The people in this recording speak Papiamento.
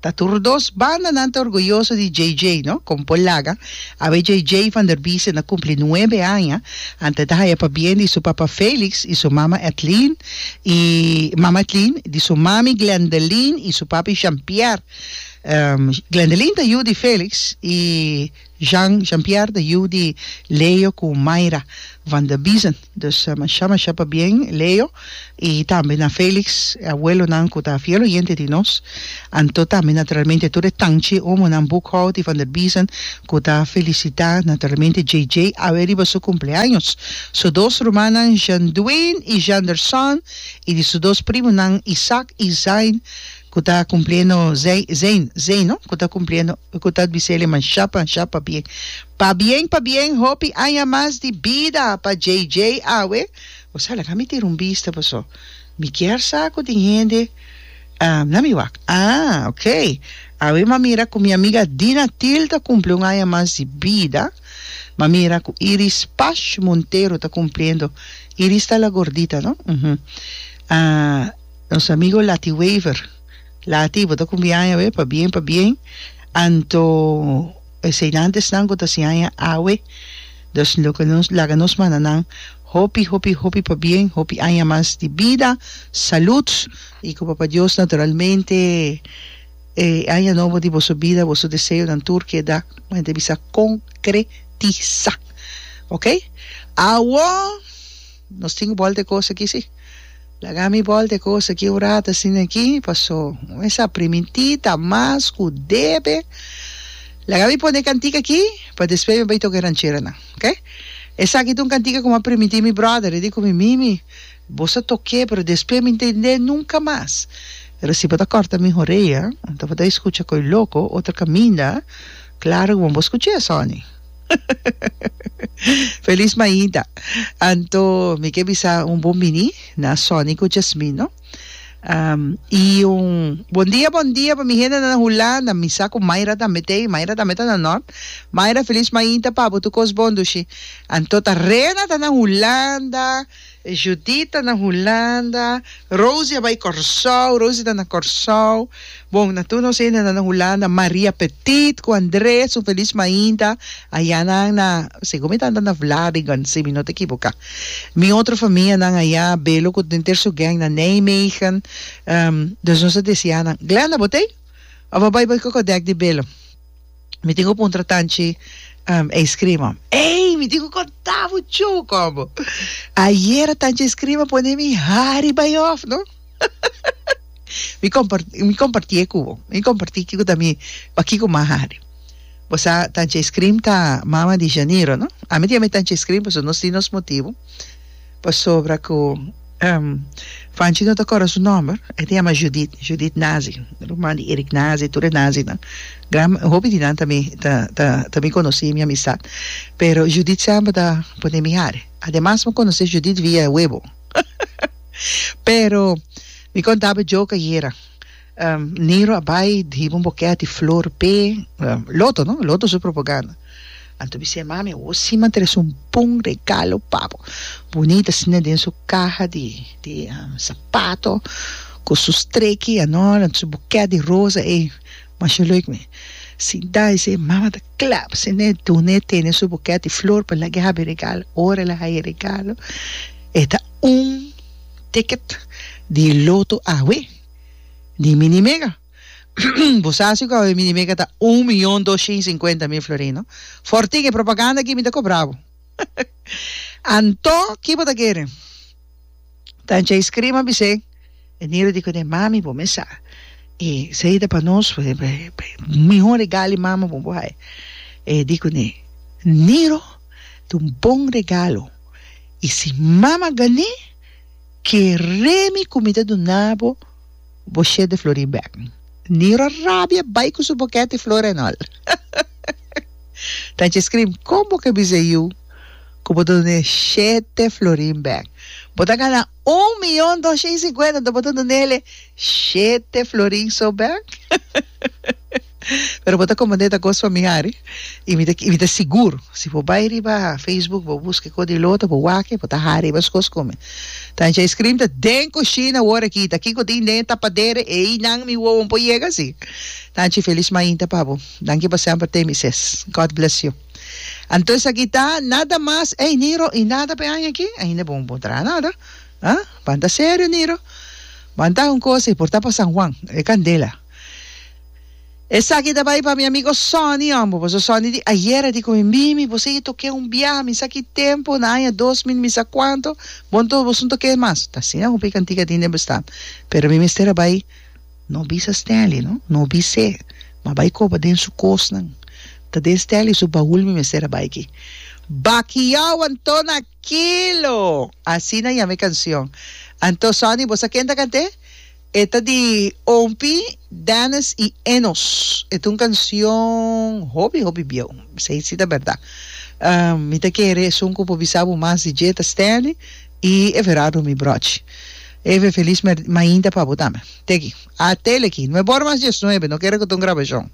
Ta tur dos bandanan ta orguyoso di JJ, no? Kon por laga? Awe JJ van der Biesen a kumpli nuebe aña, antes ta haya pabien di su papa Felix i su mama Ethlien, i mama Ethlien, di su mami Glendeline i su papi Jean-Pierre. Glendeline ta yu di Felix i. Jean, Jean-Pierre ta yu di Leo cu Mayra van der Biesen. Dus masha masha pabien Leo y tambe na Felix, e abuelonan cu ta fiel oyente di nos, anto tambe naturalmente tur e tanchi omonan Boekhout y van der Biesen cu ta felicita naturalmente JJ awe riba su cumpleaños, su dos rumannan Jean-Duin y Jeanderson y di su dos primonan Isaac y Zain. Cu ta cumpliendo Zey, Zein, Zey no? Cu ta cumpliendo, cu ta bisele man shapa, shapa bien. Pabien, pabien, hopi aña mas di bida pa JJ awe. O sa, laga mi tira un bista paso mi kier sa cu tin hende ah, na mi wak. Ah, ok. Awe m'a mira cu mi amiga Dina Thill ta cumpli un aña mas di bida. M'a mira cu Iris Pash Montero ta cumpliendo. Iris ta la gordita no? Uhum. Ah. Nos amigo Lati Wever. Lati, bo ta kumbi aña awe? Pa bien, pa bien. Anto e seinantesnan ku ta si aña awe. Dus lo ke nos laga nos manda nan hopi, hopi, hopi pa bien, hopi aña mas di bida, salut i ku Papa Dios naturalmente e aña nobo di boso bida, boso deseonan tur keda, ku henter bisa, konkretisá. Oke? Awor! Nos tin un bòl de kos aki si. Laga mi bòl de kos aki un rat asin aki paso mesa primintí ta mas ku debe. Laga mi pone e kantik aki pa despues mi bai toka e rancheranan ok. Esaki ta un kantik ku mi a primintí mi bròder i di ku mi Mimi bos a tok'é pero despues mi ntendé nunka mas. Pero si bo ta kòrta mi horea tabata e skucha koi loko otro kaminda klaro ku bo no por skuch'é asòni. Feliz maida. Anto mi ke bisa un bon bini na Sonny ku Jasmine no. Um, i un bon dia bon dia pa mi hendenan na Hulanda. Mi sa ku Mayra tambe ta ei, Mayra tambe ta na Nort. Mayra feliz maida pa bo tur kos bon dushi. Anto ta Rena ta na Hulanda. Judith ta na Hulanda. Rosie a bai Kòrsou. Rosie ta na Kòrsou. Bon, na tur nos hende nan na Hulanda. Maria Petit ku André, su felis mainta. Aya nan na, segun mi tanta na Vlaardingen, si mi no ta ekiboká. Mi otro famianan aya, Belo ku den ter su gèng na Nijmegen. Dus nos a deseá nan, Glenda, bo t'ei? Of a bai bai kok'o dèk di Belo? Mi tin ku puntra tanchi um e iskrima. Ey, mi tin ku konta bo cho kobo. Ayera tanchi e iskrima pone mi hari bai of, no? mi kompart, mi komparti e ku bo. Mi komparti kiko ta mi, pa kiko ma hari. Bo sa, tanchi e iskrim ta mama di Janiro, no? Ami tin ami tanchi e iskrim pasobra nos tin nos motibu. Pasobra cu Fanchi no ta acorda su nomber, e ta yama Judith, Judith Nazi, ruman di Eric Nazi, tur e Nazinan. Gran, hopi di nan ta mi, ta, ta, ta mi conoci, mi amistad. Pero Judith semper ta pone mi hari. Ademas mi conoce Judith via e webo. Pero mi contaba joke ayera. Niro a bai di hiba un bokèt di flor p'e Loto, no? Loto su propaganda. Anto bis'é, Mami, awor sí m'a trese un bon regalo pa bo. Bunita asina na den su kaha di di sapato, ku su streki anor, anto su bokèt di rosa ei. Masha lèk mi. Sinta i sey, Mami a ta kla pa siné dun'é tene su bokèt di flor pa lag'é hab'é regalo. Ora el a haña regalo, e ta un ticket di Loto awe. Di minimega. Bo sa si ku awe minimega ta un mion doshin sinkuenta mil florin, no? For tin e propaganda ki mi ta kobra bo. Anto ki bo ta kere? Tanchei skirima a bis'é, E Niro di kuné mami bo mesa i sei ta pa nos e mihó regalo mama bo bo hai. E di kuné, Niro ta un bon regalo i si mama gané, Keremi ku mi ta duna bo boshet di flori bèk. Niro rabia bai ku su bokèt di flori anòl. Tanchi Scream, kon bo ke bisa yu ku bo ta duna e shete florin bèk? Bo ta gana un miyon doshen i sinkuenta, anto bo ta duna el e shete florin so bèk? Pero bo ta komprendé ta kos familiar i i mi ta i mi ta sigur si bo bai riba facebook bo buska e kos di lota bo wak e bo ta haña riba su kos kume ta anchi ice cream ta den kushina wor a kita kiko tin den e tapadera einan mi wowonan por yega si ta anchi felis mainta pa bo danki pa semper temi ses god bless you anto esaki ta nada mas ey niro y nada pa e aña aki ainda bo bo traha nada ah banta serio niro banta un kos y por ta pa san juan e candela. Esaki ta bai pa mi amigo Sonny hombre, paso Sonny di ayer a di cu mi, Mimi, bo sigui toke un biaha, mi sa ki tempo, na aña dos mil mi sa cuanto, bon to bosun toke mas. Ta asina hopi cantica tin den bestaan. Pero mi mester a bai, no bisa Stanley, no, no bis'é, m'a bai coba den su cosnan. Ta den Stanley su baul mi mester a bai aki. Bakiau anto na kilo! Asina yama e cancion. Anto Sonny, bo sa ken ta cant'é? E ta di Ompi, Dennis i Enos. E ta un canción hopi hopi bieu. Bisai si ta berda. Mi ta kere esun cu por bisa bo mas di dje ta Stanley i Everardo mi brochi. Eve Feliz mer mainta pa bo tambe. Teki. Atele aki. Nuebor mas dies nuebe. No kere cu ta un grabacion.